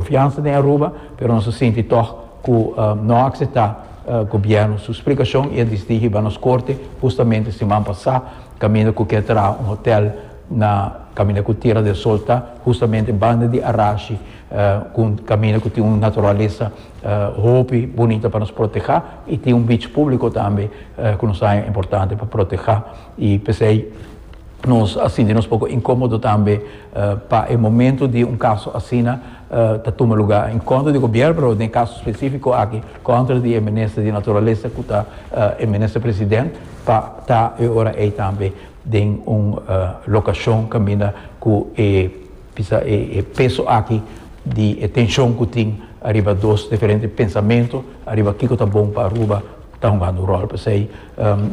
Confiansa den Aruba, pero nos a sinti tog cu no a acepta Gobierno su splicacion y a disdigi ba nos Corte justamente siman pasa, caminda cu kier traha un hotel na caminda cu Tierra del Sol ta, justamente banda di Arashi, cu un caminda cu tin un naturalesa hopi bunita pa nos proteha y tin un beach publico tambe cu nos haya importante pa proteha y p'esey nos a sinti nos poco incomodo tambe. pa e momento di un caso asina ta tuma luga en contra di gobierno pero den e caso specifico aki contra di e minister di naturalesa cu ta e minister president pa ta e ora ey tambe den un locacion caminda cu e bisa e peso aki di e tencion cu tin ariba dos diferente pensamento ariba kico ta bon pa Aruba ta hungando un rol p'esey.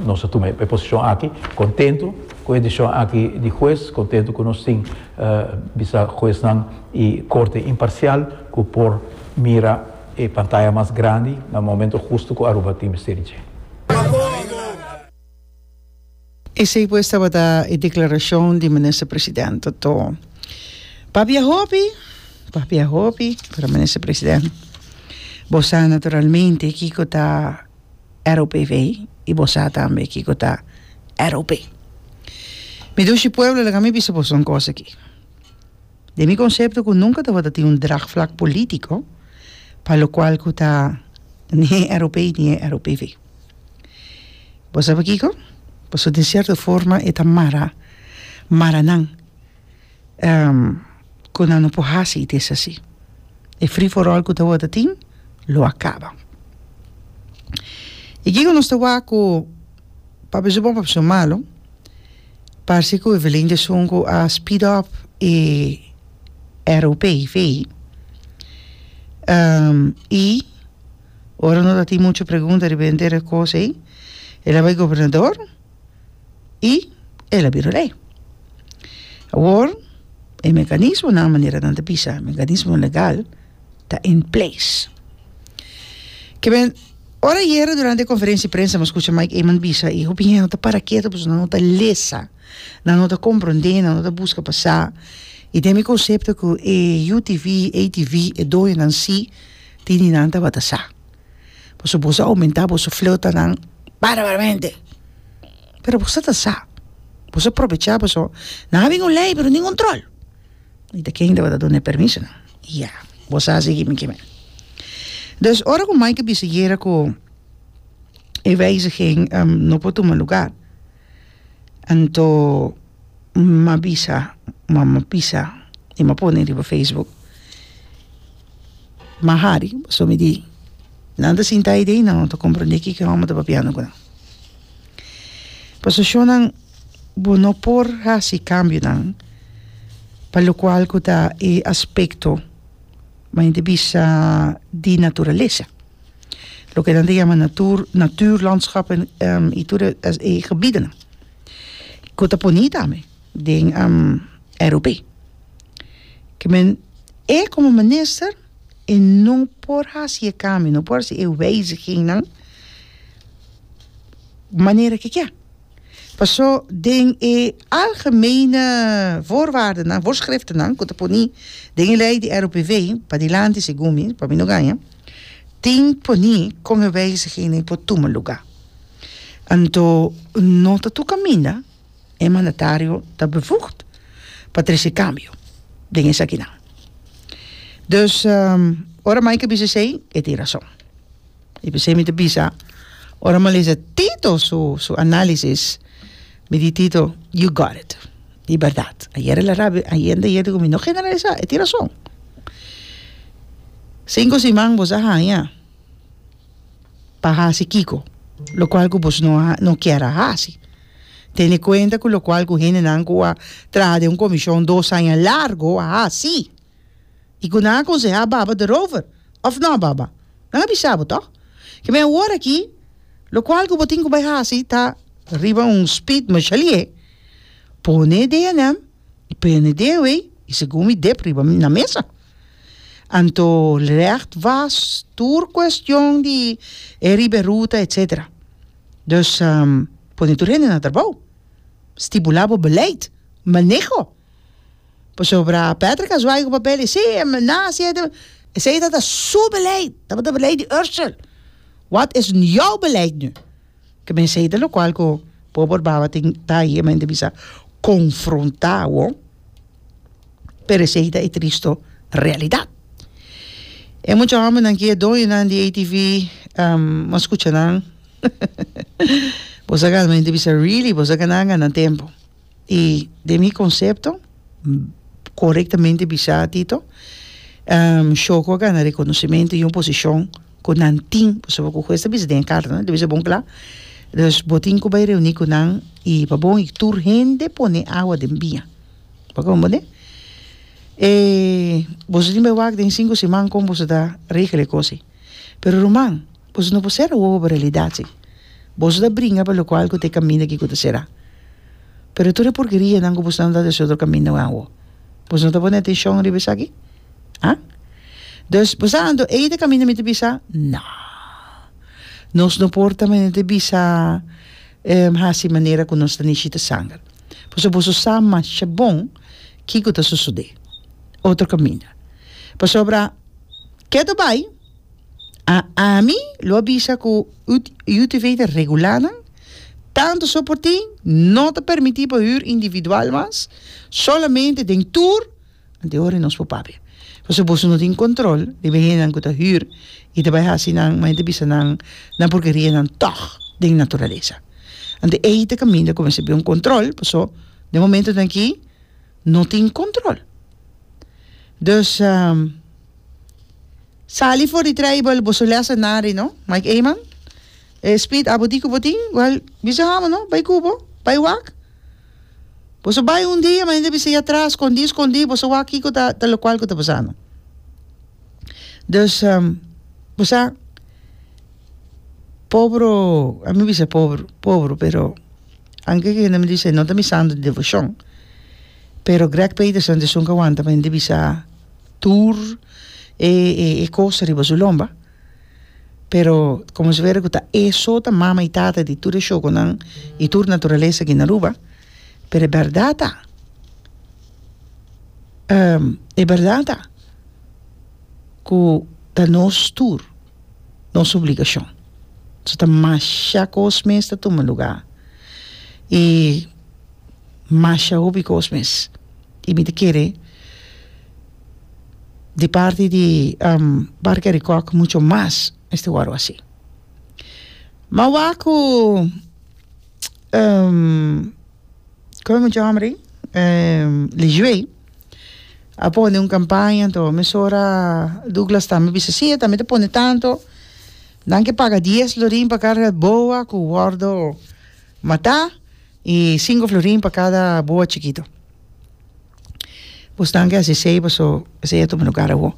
Nos a tuma e posishon aki kontentu ku e desishon aki di hues, kontentu ku nos tin bisa huesnan i korte imparsial ku por mira e pantaya mas grandi na momento hustu ku Aruba tin mester di dje. Esei pues tabata e deklarashon di Minister President Totó. Pabia hopi, pabia hopi, pero Minister President, bo sa naturalmente kiko ta. ROPV y bo sa tambe kico ta ROP. Mi dushi pueblo laga mi bisa boso un cosa aki. Den mi concepto cu nunca tabata tin un draagvlak politico pa locual cu ta ni e ROP ni e ROPV. Bo sa pakico? Pasobra den cierto forma e ta mara maranan. ku nan no por hasi it esaki. E free for all ku ta wota tin lo a kaba. E kiko nos ta wak ku pa beso bon pa beso malo parse ku Evelyn de Sun ku a speed up e ROP vei i ora no ta tin mucho pregunta riba henter e kos ei e la bai gobernador. y el a bira ley awor e mecanismonan manera nan ta bisa mecanismo legal ta in place ke men ora yere durante conferencia de prensa mi a scucha Mike Eman bisa y hopi hende ta para keto pasobra nan no ta lesa nan no ta comprende nan no ta busca pa sa y den mi concepto ku e UTV, ATV e doñonan si tin di nan tabata sa Pasobra bos a omentá boso fleutanan barbaramente. Pero boso ta sa, boso a probechá boso, nan a bin un lei pero nin control. Y ta ken tabata dun'e permiso nan? Ya, bo sa así gimi gimi. Dus ora cu Mike a bisa yera cu e wijziging no por tuma lugar, Anto m'a bisa, m'a m'a pisa i m'a pone riba facebook, m'a hari paso mi di nan ta sinta ai di ai nan ta komprende kiko e hòmber ta papiando ku nan paso shò nan bo no por hasi kambionan pa lokual ku ta e aspekto men ta bisa di naturalesa. loke nan ta yama natuur, natuurlandschappen, y tur e gebidenan, ku ta poni tambe den RUB. Ke men, e komo minister, e no por hasi e kambionan, no por hasi e wijzigingnan manera ke kier. Paso den e algemene voorwaardennan, voorschriftennan, ku ta poni den e lei di RUPV padilanti, segun mi, pa mi no gaña, tin poni kon e wijzigingnan por tuma lugá. Anto no ta tur kaminda e mandatario ta bevoegd pa trese kambio den esakinan. Dus, ora Mike a bisa esei, e tin rason. I p'esei mi ta bisa, ora mi a lesa Tito su su análisis, mi di Tito, you got it. I bèrdat, ayer el a rabia, a hende ayer diku mi, no generalisá, e tin rason. Sinku siman boso a haña pa hasi kiko? Lokual ku boso no a no kier a hasi. Tene kuenta ku lokual ku hendenan ku a traha den un komishon dos aña largu a hasi. I ku nan a konsehá baba derover, òf nò baba? Nan a bisa bo tòg? Ke mi a hoor aki, lokual ku bo tin ku bai hasi ta riba un speed mashali'é, pone e deanem i prende deawei i segun mi dep riba na mesa. Anto recht was tur kuestion di e riba e ruta etsetera. Dus pone tur hende na trabou. Stipulá bo beleid, maneho. Pasobra Patrick a zwaai ku papel i si e na hasi e esei tabata su beleid, tabata beleid di Ursel, wat es you beleid nu? Ke mensei ta lokual ku bo por baba tin ta ahi e mente bisa konfrontá bo, pero esei ta e tristu realidat. E mucha hòmbernan ki e doñonan di ATV bo a skucha nan bo sa galmente bisa really bo sa gana gana tempu. i den mi konsepto korektamente bisa Tito shoko a gana rekonosementu i un posishon ku nan tin pasobra ku hues ta bisa den e karta ta bisa bon kla dus bo tin ku bai reuni ku nan i pa bon i tur hende pone awa den bia bo kon bo de e boso tin bai wak den sinku siman kon boso ta regla e kosa pero ruman Boso no por sera wowo pa realidat si. Boso ta bringa pa lokual ku ta e kaminda ki ku ta será. Pero tur e purkerianan ku boso ta andá des otro kaminda wen awo. Boso no ta pone atenshon riba esaki? Ha? Dus boso ta ando ei ta e kaminda mi ta bisa? No. Nos no por ta menen ta bisa hasi manera ku nos ta nishita sanger. Pasobra boso sa masha bon ki ku ta sosodé. Otro kaminda. Pasobra ke ta bai? A ami lo a bisa ku UTV ta regulá nan, tantu so por tin no ta permití pa hür individual mas, solamente den tur ante ora nos por papia. Pasobra boso no tin kòntròl riba e hendenan ku ta hür i ta bai hasi nan maña ta bisa nan nan purkerianan tòg den naturalesa. Anto ei ta kaminda ku mester bai un kòntròl paso den momentonan aki no tin kòntròl. Dus. Sali for di treibel boso lesa nari no Mike Eman e spit abo di ku bo tin well bisa amo no bai ku bo bai wak boso bai un dia mi ta bisa ya tras skondi skondi boso wak kiko ta ta lokual ku ta pasando dus bo sa pobru a mi bisa pobru pobru pero anke ke hende mi ta bisa e no ta mi santo di devoshon pero Greg Peterson ta esun ke wanta mi ta bisa. tur e e e cos riba su lomba pero como si fuera cu ta eso ta mama y tata di tur e shokonan y tur naturaleza aki na Aruba pero e berdad ta e berdad ta cu ta nos tur. nos obligashon. So ta masha kos mes ta tuma lugá i masha hopi kos mes i mi ta kere di parti di Parke di Kòk mucho mas este wòru así. Ma wak ku kon mi chama hombri Lishue. a pone un campaña anto mesora Douglas ta me bisa si e ta me ta pone tanto nan ke paga dies florin pa carga boa cu wordo mata y cinco florin pa cada boa chikito pues nan ke hasi esey paso esey a tuma lugar awo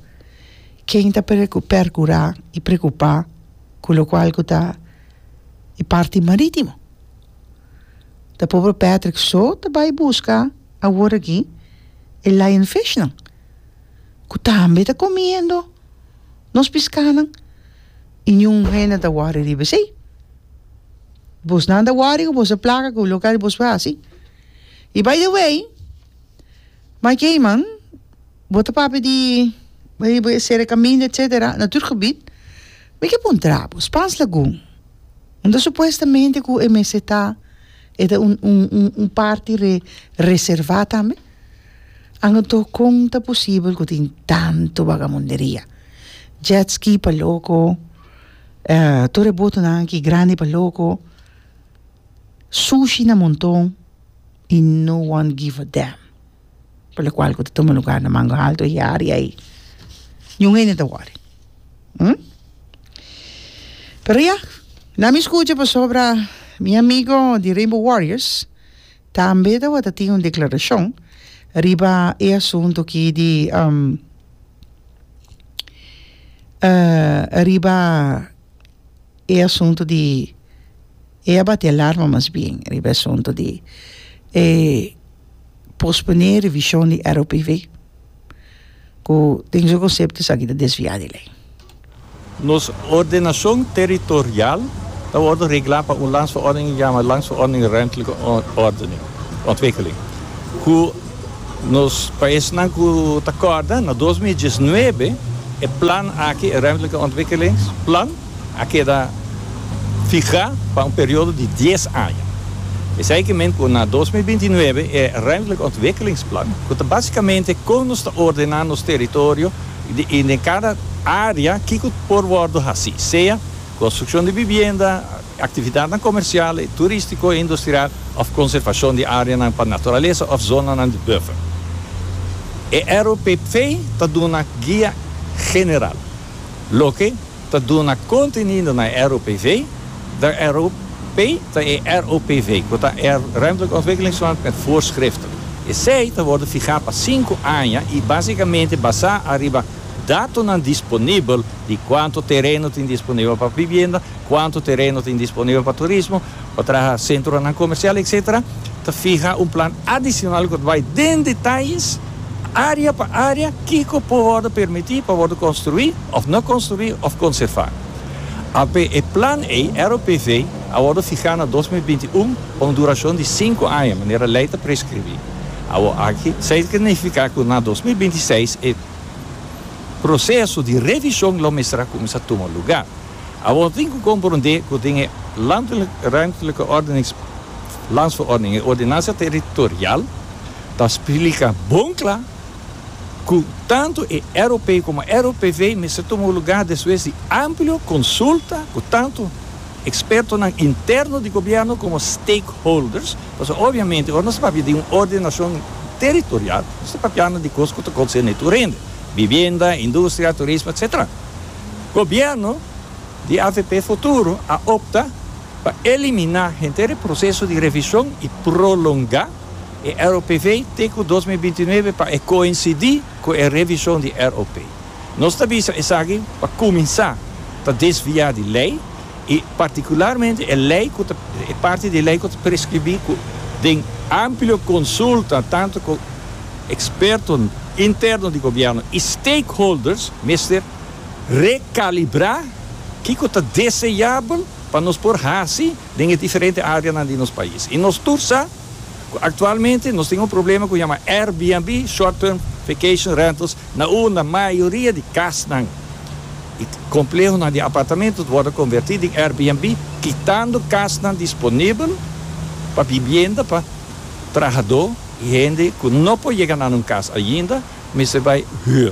ken ta preocu percura y preocupa cu locual cu ta e parti maritimo ta pope Patrick so ta bay busca. Awor aki e lionfishnan ku tambe ta komiendo nos piskanan i niun hende ta wòri riba esei. Bosnan ta wòri ku boso plaka ku loke bos por hasi. I by the way, My Cayman, bo ta papia di riba e sere kaminda etsetera, natuurgebied, mi ke puntra bo, Spaans Lagoon, unda supuestamente ku e mester ta E ta un un un un parti re reserva tambe anto con ta posibel cu tin tanto bagamunderia jet ski pa loco tur e botonan aki grandi pa loco sushi na monton y no one give a damn. Por lo cual cu ta tuma lugar na Mango Alto y area ayi niun hende ta wori. Hm? Pero ya, na mi scucha pasobra mi amigo di Rainbow Warriors tambe tabata tin un declaracion riba e asunto aki di um, uh, riba e asunto di, e a bati alarma mas bien riba e asunto di e. posponé revishon di ROPV ku den su konsepto esaki ta desviá di lei. Nos ordenashon teritorial ta wòrdu reglá pa un landsverordening di yama Landsverordening Ruimtelijke Ordening, Ontwikkeling, ku nos pa esnan ku ta kòrda na dos mil diesnuebe e plan aki, e Ruimtelijke Ontwikkelings Plan, a keda fihá pa un periodo di dies aña. Esei ke men ku na dos mil binti nuebe e Ruimtelijke Ontwikkelingsplan, ku ta básikamente kon nos ta ordená nos teritorio i den kada área kiko por wòrdu hasí, sea konstrukshon di bibienda, aktividatnan komersial, turístiko i industrial òf konservashon di áreanan pa naturalesa òf zonanan di buffer. E ROPP ta duna guia general. loke ta duna kontenido na e ROPV, de ROP ta e ROPV, ku ta e Ruimtelijke Ontwikkelingsplan met voorschriften. Esei ta worde fihá pa sinku aña i básikamente basá ariba datonan disponibel di kuantu tereno tin disponibel pa bibienda, kuantu tereno tin disponibel pa turismo, pa traha sentronan komersial etc. Ta fiha un plan adisional ku ta bai den detayes, área pa área, kiko por wòrdu permití pa wòrdu konstruí òf no konstruí òf konservá. Alpe e plan ei, ROPV, a wòrdu fihá na dos mil binti un pa un durashon di sinku aña, manera lei ta preskribí. Awor aki sa ta nifiká ku na dos mil binti seis e proseso di revishon lo mester a kuminsá tuma lugá. Awor tin cu comprende cu den e Landelijk-Ruimtelijke Ordenings, Landsverordening, e Ordenansa Territorial, ta splica bon cla cu tanto e ROP como e ROPV mester tuma un lugar despues di amplio consulta cu tanto expertonan interno di Gobierno como stakeholders, pasobra obviamente ora nos ta papia di un ordenacion territorial nos ta papiando di cos cu ta concerne tur hende, vivienda, industria, turismo, etcetera. Gobierno di avp Futuro a opta pa eliminá henter e proseso di revishon i prolongá e ROPV te ku dos mil binti nuebe pa e koinsidí ku e revishon di ROP. Nos ta bisa esaki pa kuminsá ta desviá di lei. i partikularmente e lei ku ta e parti di e lei ku ta preskribí ku den amplio konsulta tantu ku ekspertonan interno di gobièrnu i stakeholders mester rekalibrá kiko ta deseabel pa nos por hasi den e diferente áreanan di nos pais. I nos tur sa ku aktualmente nos tin un problema ku yama Airbnb, short-term vacation rentals, Na unda mayoria di kasnan i komplehonan di apartamentu wòrdu konvertí den Airbnb, kitando kasnan disponibel pa bibienda pa trahadó i hende ku no por yega na nan kas ainda, mester bai hür.